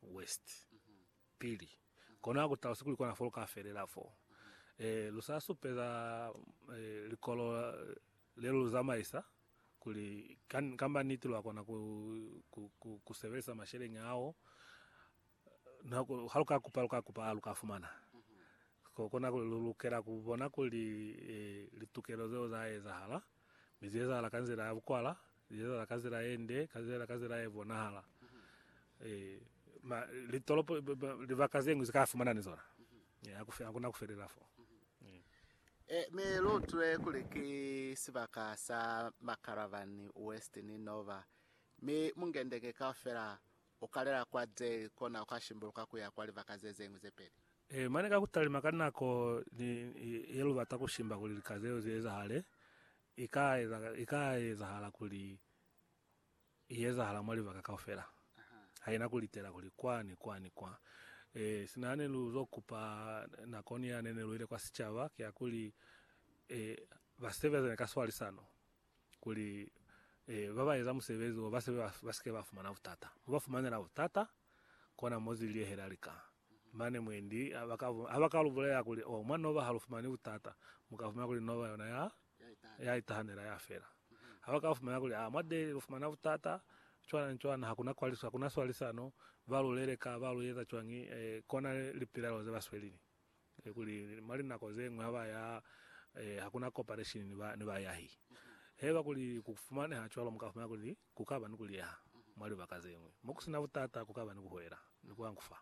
West pili, kono ha ku talusi kuli kona fo lu ka felela fo. E, lu sa supeza e, likolo le lu zamaisa kuli ka, kamba niti lwa kona ku, ku, ku, ku sebelisa masheleñi ao. Na ku, ha lu ka kupa, lu ka kupa, lu ka fumana. Ko kona kuli lu lukela ku bona kuli e, litukelo zeo za ezahala, mi zi ezahala ka nzila ya bukwala, Lilela ka zila ye nde, ka zila ka zila ye bonahala. E, ma, litolopo, libaka ze ngwi zika fumana ni zona. E, hakuna kufelela fo. E, mi lutwe kuli ki sibaka sa Macaravan West ni Nova, mi mungendenge kaufela ukalela kwa Dale kona uka shimbuluka kuya kwa libaka ze ze ngwi ze peli. E, mane ka kutalima ka nako ni, ni, ye lubata kushimba kuli lika zeo zi ezahale, I ka eza, i ka ezahala kuli i ezahala mwa libaka kaufela. Haina ku litela kuli kwa ni kwa ni kwa. E, sina hane lu zo kupa nakoni yane ne lu ile kwa sicaba, kiakuli, e, ba sebezane ka swalisano, kuli, e, ba ba eza musebezi wo ba sebe ba, ba sike ba fumana butata. Mo ba fumanela butata, kona mo ziliehela lika. Mane mwendi habakalu bulela kuli, Oh, mwa Nova halufumani butata, mukafumana kuli Nova yona ya, ya itahanela ya fela. Habaka fumana kuli, Ah, mwa Delhi lufumana butata, cwana ni cwana, hakuna kwaliso, hakuna swalisano, ba lu leleka, ba lu yeza cwañi, eh, kona lipilelo ze ba swelini, eh, kuli mwa linako zeñwi haba ya, eh, hakuna cooperation ni ba, ni bayahi. Haiba kuli ku fumaneha cwalo, mukafumana kuli Ku ka ba ni ku liyaha mwa libaka ze ñwi mo ku si na butata, ku ka ba ni ku hwela ni ku angufa.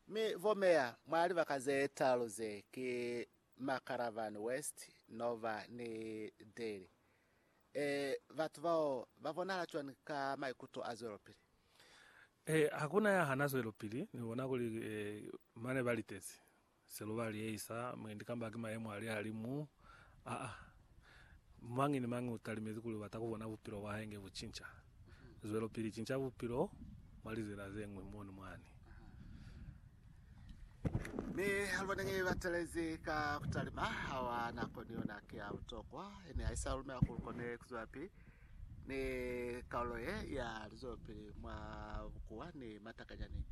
Mi bo meya mwa libaka ze talu ze ki Makaravan West, Nova ni Delhi. Ee, batu bao ba bonahala cwani ka maikuto a zwelopili? Ee, ha ku na ya hana zwelopili ni bona kuli, ee, mane ba litezi. Se lu ba liesa mwendi kamba ki mayemo a lihalimu a a. Mañi ni mañi u talimezi kuli u bata ku bona bupilo bwa hae nge bu cinca. Zwelopili cinca bupilo mwa lizila ze ñwi mo ni mwani. Mi ha lu baneñi ba telezi ka ku talima, ha wa nako ni yona ki ya butokwa. Ne ha i sa lumela ku lu kone ku zwelapili. Ne kalulo ye ya lizwelopili mwa bukuwa ni matakanyani,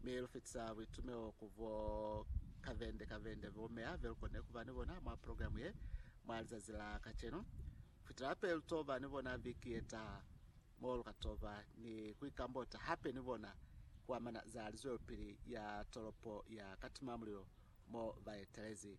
mi lufitisa buitumeo ku bo kavende kavende bo meya be lukone kuba ni bona mwa progilamu ye mwa lizazi la kacenu. Kufitela hape lutoba ni bona viki yetaha, mo lukatoba ni kuikambota hape ni bona kuamana za lizwelopili ya tolopo ya Katimamulilo mo baetelezi